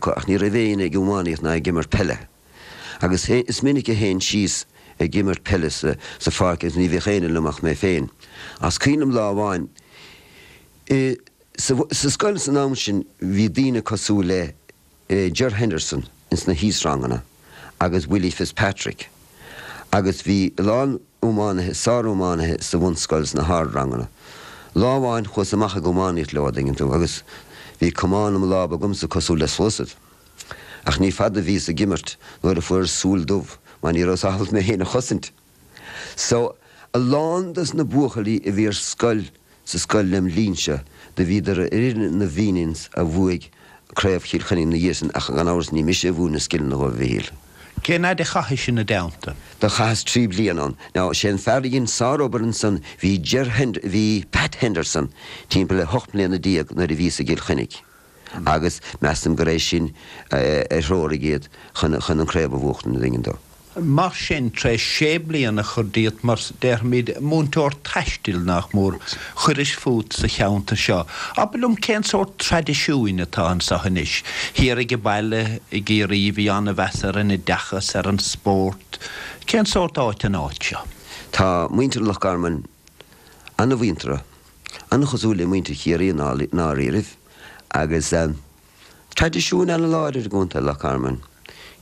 Ach ní raibh éinne ag iománaíocht ná ag imirt peile. Agus is minic a théinn síos ag imirt peile sa pháirc agus ní bhíodh éinne liom ach mé féin. Agus cuimhním lá amháin, insa scoil san am sin bhí daoine cosúil le Ger Henderson ins na híosranganna. agus Willie Fitzpatrick, agus bhí a lán iománaithe, sár-iománaithe sa bhunscoil sna hardranganna. Lá amháin chuas amach ag iománaíocht leo, dtuigeann tú, agus bhí camán im lámh agamsa cosúil le sluasaid. Ach ní fada a bhíos ag imirt nuair a fuaireas súil dubh, mar ní rabhas ábalta mé féin a chosaint. So, a lán dos na buachaillí a bhí ar scoil sa scoil lem' linn-se, do bhíodar ar fhoireann na bhFenians a bhuaigh craobh Chill Chainnigh ina dhiaidh san ach gan amhras ní mise a mhúin na scileanna dhóibh, a Mhichíl. Cén fhaid a chaithis ina dteannta? Do chaitheas trí bliana ann. Now, sé an fear a dhein sárobair ansan, bhí Ger Hend, bhí Pat Henderson timpeall le hocht mbliana déag nuair a bhíos i gCill Chainnigh. agus measaim gur é sin a threoraigh iad chun an craobh a bhuachtaint an dtuigeann tú. Mar sin, tar éis sé bliana a chur díot mar, déarfaimid, múinteoir taistil, nach mór, chuiris fút sa cheantar seo. Abair liom, cén sórt traidisiúin atá anseo anois? Thiar ag an baile i gCiarraí, bhí an-mheas ar an oideachas, ar an spórt. Cén sórt áit an áit seo? Tá muintir Loch Garman an-mhuinteartha. An-chosúil le muintir Chiarraí i ndáiríribh, agus traidisiúin ana-láidir i gContae Loch Garman,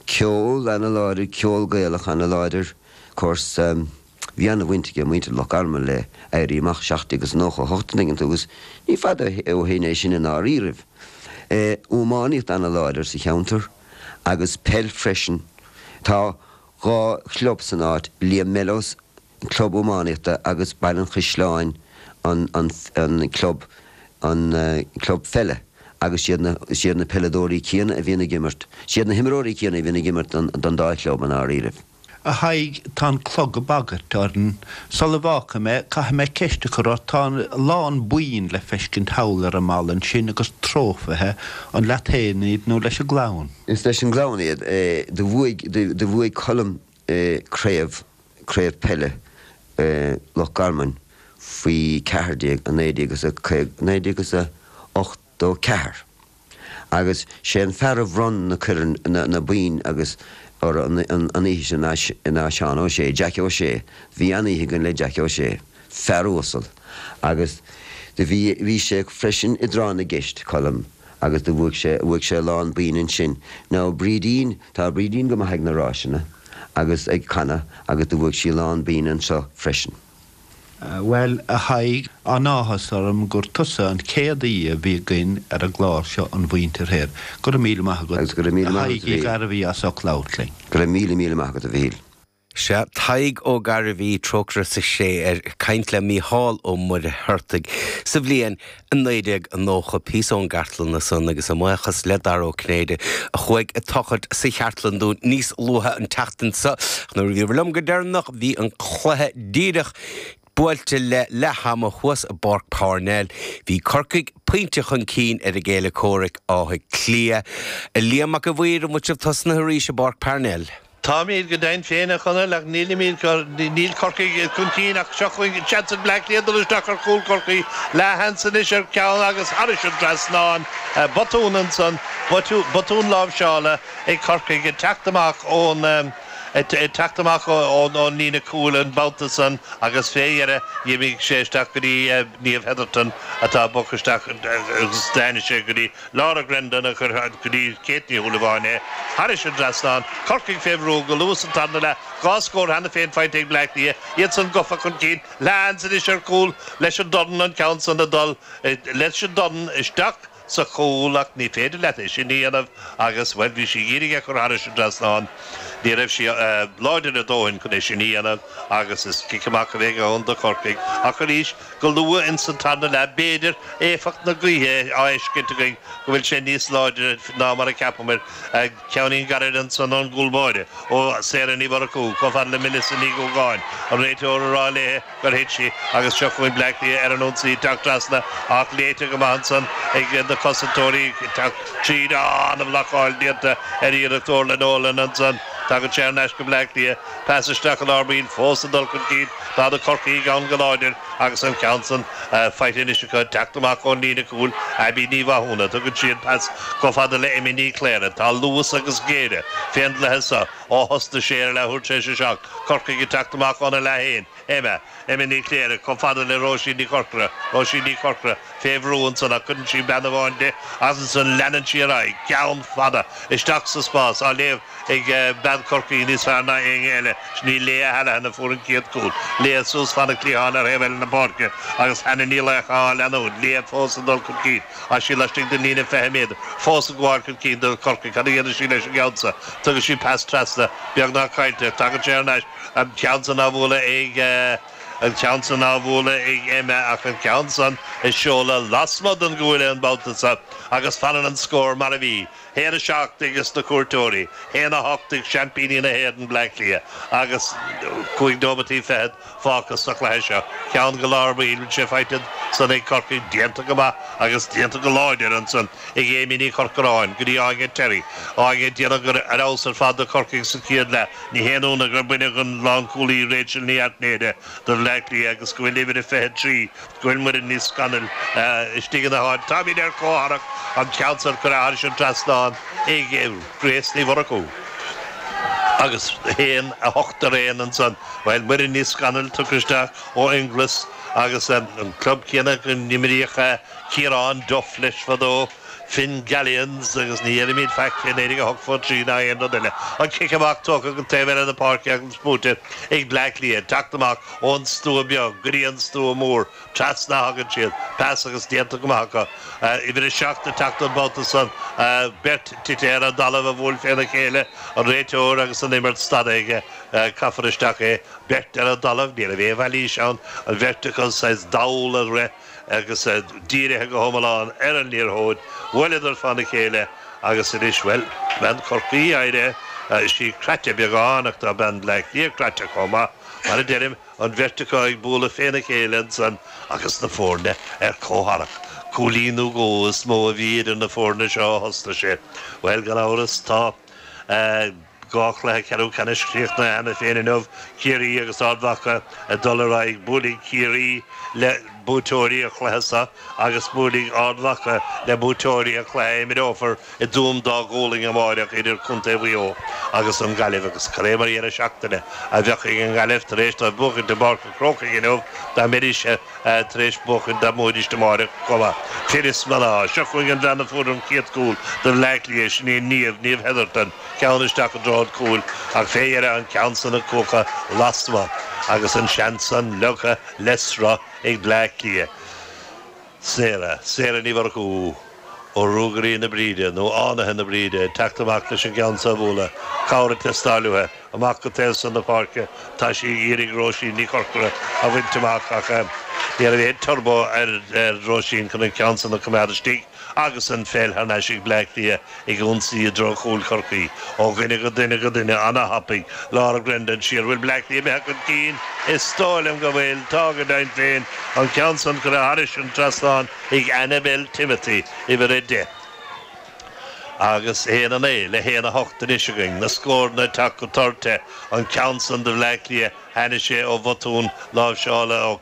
ceol ana-láidir, ceol Gaelach ana-láidir. Course, bhí an-bhaint ag muintir Loch Garman le Éirí Amach 1798 dtuigeann tú, agus ní fada ó shin é sin i ndáiríribh. Iománaíocht ana-láidir sa cheantar, agus peil freisin. Tá dhá chlub san áit, Liam Mellows, club iománaíochta agus Baile an Chaisleáin an an club an club pheile agus siad na siad na peileadóirí céanna a bhíonn ag imirt siad na himreoirí céanna a bhíonn ag imirt don don dá chlub i ndáiríribh. A Thaidhg, tá an clog ag bagairt orainn. Sul a bhfágfaidh mé, caithfidh mé ceist a chur ort, tá a lán boinn le feiscint thall ar an mballa ansin agus trófaithe, an leat fhéin iad nó leis an gclann? Is leis an gclann iad. Do bhuaigh do bhuaigh Colm Craobh Craobh Peile Loch Garman faoi cheathar déag i naoi déag is a caoga, naoi déag is a ochtó ceathair, agus sé an fear a bhronn na coirn, na, na boinn agus orthu an, an oíche sin ná Seán Ó Sé, Jack Ó Sé, bhí an-oíche againn le Jack Ó Sé. Fear uasal. Agus do bhí, bhí sé freisin i dtráth na gceist, Colm, agus do bhuaigh sé, bhuaigh sé a lán boinn ansin. Now Brídín, tá Brídín go maith ag na ráiseanna agus ag canadh agus do bhuaigh sí a lán boinn anseo freisin. Bhuel, a Thaidhg, an-áthas orm gur tusa an chéad aoi a bhí againn ar an gclár seo An Mhuintir Thoir. Go raibh míle maith agat, a Thaidhg Uí Ghairbhí as ucht labhairt linn. Go raibh míle, míle maith agat, a Mhichíl. Sea, Tadhg Ó Gairbhí, trócaire sa chré air, ag caint le Mícheál Ó Muircheartaigh sa bhliain 1990, píosa ón gcartlann ansan, agus ár mbuíochas le Dara Ó Cinnéide a chuaigh ag tochailt sa chartlann dúinn níos luaithe an tseachtain seo. Nuair a bhíobhair liom go deireanach bhí an cluiche díreach buailte le leath ama thuas i bPáirc Parnell. Bhí Corcaigh pointe chun cinn ar a gcéile comhraic, Áth Cliath. A Liam Mac a' Mhaoir, an bhfuil sibh tosnaithe arís i bPáirc Parnell? Táimid go deimhin féin a Chonaill ach nílimid, níl Corcaigh chun cinn ach seo chugainn an seans ag Bleá Cliath dul isteach ar chúl Chorcaí, leathsheans anois ar cheann agus thairis an trasnán, botún ansan, botún láimhseála ag Corcaigh ag teacht amach ón ag teacht amach ón líne cúil an babhta san agus fé dheireadh dh'imigh sé isteach go dtí Niamh Hetherton atá a bpoc isteach agus tháinig sé go dtí Laura Grendon agus chuir Kate Ní Shúilleabháin é thairis an dtrasnán. Corcaigh fé bhrú go luath sa tarna leath, dhá scór cheana féin faighte ag Bleá Cliath, iad san gofa chun cinn leathsheans anois ar chúl leis an dorn an ceann san ag dul leis an dorn isteach sa chúl ach ní féidir leat é sin a dhéanamh agus bhuel bhí sí ag iarraidh é a chur thairis an dtrasnán ní raibh sí láidir a dóthain chun é sin a dhéanamh agus is cic amach a bheidh ann do Chorcaigh ach arís Go luath ins an tarna leath b'fhéidir éifeacht na gaoithe á fheiscint againn go bhfuil sé níos láidre ná mar a cheapamair, ceann eile gairid ansan ón gcúl báire ó Sarah Ní Mhurchú, chomh fada le Melissa Ní Dhúgáin, an réiteoir, ag rá léi gur thit sí, agus seo chugainn Bleá Cliath ar an ionsaí ag teacht trasna, ach léite go maith ansan ag na cosantóirí ag teacht tríd. Á! Ana-bhlocáil déanta ar iarracht Orlagh Nolan ansan. Tagann sé thar n-ais go Bleá Cliath. Pas isteach i lár baill fós ag dul chun cinn. Tá na Corcaígh ann go láidir agus an ceann san faighte anois acu ag teacht amach ón líne cúil. Abbie Ní Mhathúna, tugann sí an pas chomh fada le Emma Ní Chléirigh. Tá luas agus géire fén gcluiche seo ó thosnaigh sé ar a leathuair tar éis a seacht. Corcaigh ag teacht amach óna leath fhéin. Emma, Emma Ní Chléirigh, chomh fada le Róisín Ní Chorcora, Róisín Ní Chorcora, fé bhrú ansan ach cuireann sí bean amháin di agus ansan leanann sí ar aghaidh, ceann fada, isteach sa spás, á léamh ag eh bean Chorcaí níos fearr ná éinne eile, sin í Leah Hallihan a fuair an chéad chúl, Leah suas fan an chliatháin ar thaobh eile na páirce agus Hannah Ní Laocha á leanúint, Leah fós ag dul chun cinn tá sí laistigh den líne fiche méadar, fós ag gabháil chun cinn do Chorcaigh, cad a dhéanann sí leis an gceann sa, tugann sí pas trasna, beagnach caillte ach tagann sé thar n-ais, an ceann san á bhualadh ag, an ceann san á bhualadh ag Emma ach an ceann san ag seoladh lasmuigh den gcuaille an babhta so agus fanann an scór mar a bhí, haon a seacht ag na cuairteoirí, haon a hocht ag seaimpíní na hÉireann, Bleá Cliath, agus cúig nóimeataí fichead fágtha sa chluiche seo. Ceann go leor, bhuel tá sé faighte ansan ag Corcaigh, déanta go maith agus déanta go láidir ansan. ag Amy Ní Chorcoráin go dtí Áine Terry, Áine ag déanamh ar fheabhas ar fad do Chorcaigh sa chéad leath, ní haon ionadh gur baineadh an lánchúlaí Rachel Ní Airtnéide do Bhleá Cliath agus go bhfuil uimhir a 23, go bhfuil Muireann Ní Scanaill, istigh ina háit. Táimid ar comhtharrac an ceann san a cuireadh thairis an trasnán ag Grace Ní Mhurchú agus 1, 8 ar aon ansan, bhuel Muireann Ní Scanaill tugtha isteach ó Fhine Gall is agus an club céanna go n-imríodh a. Ciarán Duff leis fadó, Fingallians agus ní dheirimíd faic fén aois a 23 ná aon rud eile. An cic amach tugtha go dtí an taobh eile na páirce agus buaite ag Bleá Cliath. Ag teacht amach ón stua beag go dtí an stua mór trasna a thagann siad, pas agus déanta go maith acu. Uimhir a seacht ag teacht an babhta san, beirt tite ar an dtalamh a bhuail féna chéile, an réiteoir agus an imirt stadta aige. Caithfear isteach é. Beirt ar an dtalamh, ní raibh aon mhailís ann, an bheirt acu ag dul ar aghaidh. agus iad dírithe go hiomlán ar an liathróid, bhuaileadar féna chéile agus anois, bhuel, bean Chorcaí d'éirigh sí croite beagán ach tá bean Bhleá Cliath croite chomh maith, mar a deirim, an bheirt acu ag bualadh féna chéile ansan agus na foirne ar comhtharrac. Cúilín nó dhó is mó a bhí idir na foirne seo ó thosnaigh sé. Bhuel, gan amhras, tá. Dhá chluiche ceathrú ceannais críochnaithe cheana féin inniu, Ciarraí agus Ard Mhacha ag dul ar aghaidh. Buailfidh Ciarraí le buaiteoirí an chluiche seo agus buailfidh Ard Mhacha le buaiteoirí an chluiche a imreofar i dTuaim Dá Ghualainn amáireach idir Contae Mhaigh Eo agus an Ghaillimh agus cad é mar dheireadh seachtaine a bheidh ag an nGaillimh tar éis dóibh buachaint i bPáirc an Chrócaigh inniu dá mbeidís tar éis buachaint dá mbuafaidís amáireach chomh maith. Fir is mná. Seo chugainn an bhean a fuair an chéad chúl do Bhleá Cliath, sin í Niamh, Niamh Hetherton, ceann isteach i dtreo an chúil ach fé dheireadh an ceann san ag cuachadh lasmuigh agus an seans san ligthe le sruth ag Bleá Cliath. Sarah, Sarah Ní Mhurchú ó Ruagairí na Bríde, nó Fhánaithe na Bríde, ag teacht amach leis an gceann so a bhualadh, cabhair ag teastáil uaithe, amach go taobh san na páirce atá sí ag iarraidh Róisín Ní Chorcora a bhaint amach ach ní raibh aon turbo ar Róisín chun an ceann san a choimeád istigh. Agus an pheil thar n-ais ag Bleá Cliath ag ionsaí i dtreo chúil Chorcaí, ó dhuine go duine go duine ana-thapaidh, Laura Grendon siar, bhfuil Bleá Cliath imithe chun cinn? Is dóigh liom go bhfuil. Tá go deimhin féin. An ceann san curtha thairis an trasnán ag Annabelle Timothy, uimhir a deich. Agus aon a naoi le haon a hocht anois againn. Na scóranna ag teacht go tur te. An ceann san do Bhleá Cliath, tháinig sé ó bhotún láimhseála,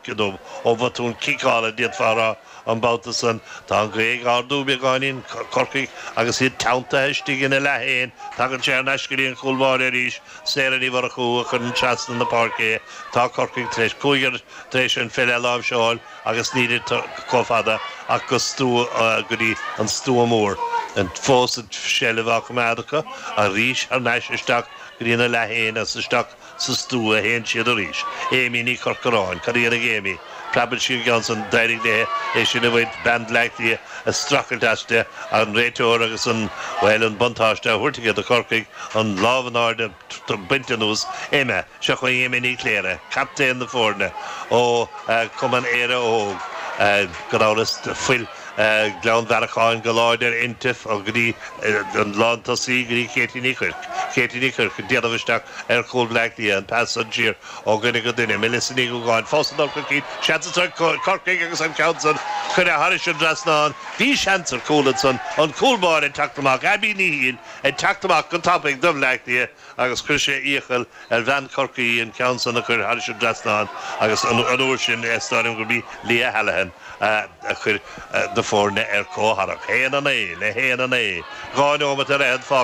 ó bhotún ciceála, d'fhéadfá a rá, An babhta san, tá an ghaoth ag ardú beagáinín, Corcaigh, agus iad teanntaithe istigh ina leath fhéin, tagann sé thar n-ais go dtí an cúl báire arís, Sarah Ní Mhurchú a chuireann trasna na páirce é, tá Corcaigh tar éis cúigear tar éis an pheil a láimhseáil agus níl iad chomh fada ach go go dtí an stua mór, fós an tseilbh á coimeád acu, arís thar n-ais isteach go dtí ina leath fhéin agus isteach sa stua a théann siad arís. Aimee Ní Chorcoráin. Cad a dhéanfaidh Aimee? Preabann sí an ceann san. D'éirigh léi é sin a bhaint, bean Bhleá Cliath ag streachailt aisti, an réiteoir agus an, bhuel, an buntáiste á thabhairt aici do Chorcaigh, an lámh in airde bainte anuas. Emma. Seo chugainn Emma Ní Chléirigh, captaen na foirne ó Chumann Éire Óg, gan amhras. Fuil Ghleann Bhearacháin go láidir inti go dtí an lántosaí, go dtí Katie Ní Chuirc, Katie Ní Chuirc ag déanamh isteach ar chúl Bhleá Cliath, an pas san siar ó dhuine go duine, Melissa Ní Dhúgáin fós ag dul chun cinn, seans anso ag Corcaigh agus an ceann san curtha thairis an dtrasnán, bhí seans ar chúl ansan, an cúl báire ag teacht amach, Abby Ní Shiail ag teacht amach go tapaidh do Bhleá Cliath, agus chuir sé iachall ar bhean Chorcaí an ceann san a chur thairis an trasnán agus an uair sin is dóigh liom gurb í Leah Hallihan a chuir na foirne ar comhtharrac. 'Haon a naoi le haon a naoi, dhá neomat ar fhichead fágtha